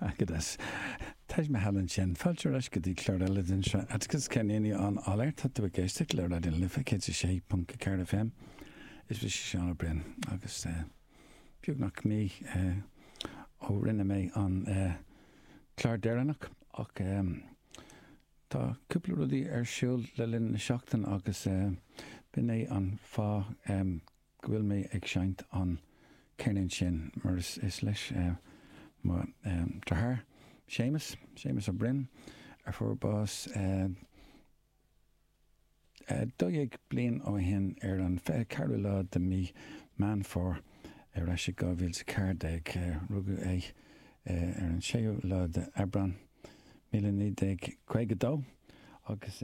Atticus, Teist na hEalaíne sin. Fáilte ar ais go dtí clár eile den seo Atticus, ceann daoine on air Tá tú ag éisteacht le Raidió na Life 106.4 FM Is mise Seán Ó Broin agus beagnach mí ó rinne mé an clár deireanach ach tá cúpla rudaí ar siúl le linn na seachtain agus b'in é an fáth go bhfuil mé ag seinnt an ceirnín sin mar is leis mo deartháir Séamus, Séamus Ó Broin a fuair bás 12 bliain ó shin ar an 24ú lá de mí Meán Fómhair ar ais i 2014. Rugadh é ar an 6ú lá de Aibreán, míle naoi déag caoga dó agus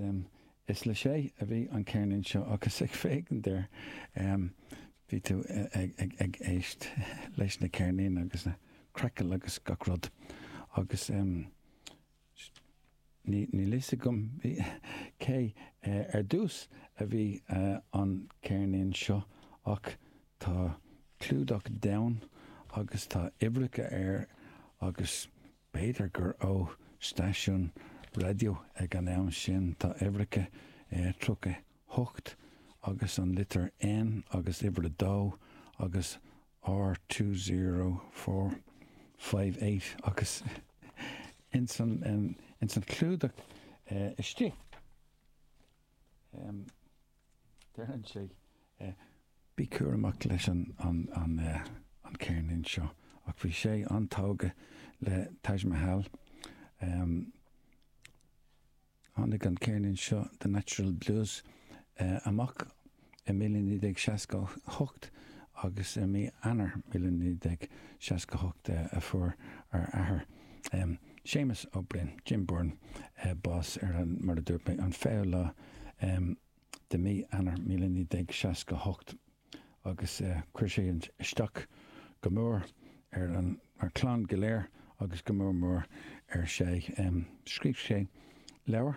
Is le Shay a bhí an ceirnín seo agus ag féachaint air bhí tú ag éist leis na ceirnín agus na crackle agus gach rud agus níl fhios agam cé ar dtús a bhí an ceirnín seo ach tá clúdach donn agus tá uimhreacha air agus B'fhéidir gur ó stáisiún raidió ag an am sin, tá uimhreacha air 38 agus an litir N agus uimhir 2 agus R two zero four five eight agus ins an clúdach istigh. Deireann sé bí cúramach leis an ceirnín seo ach bhí sé an-tógtha le Taj Mahal. Tháinig an ceirnín seo The Natch'l Blues amach I 1968 agus i mí Eanáir 1968 a fuair ár athair, Séamus Ó Broin, Jim Byrne, bás ar an, mar a dúirt mé, an fichiú lá de mí Eanáir 1968 agus chuir sé isteach go mór ar an gclann go léir agus go mór mór ar Shay. Scríobh sé leabhar.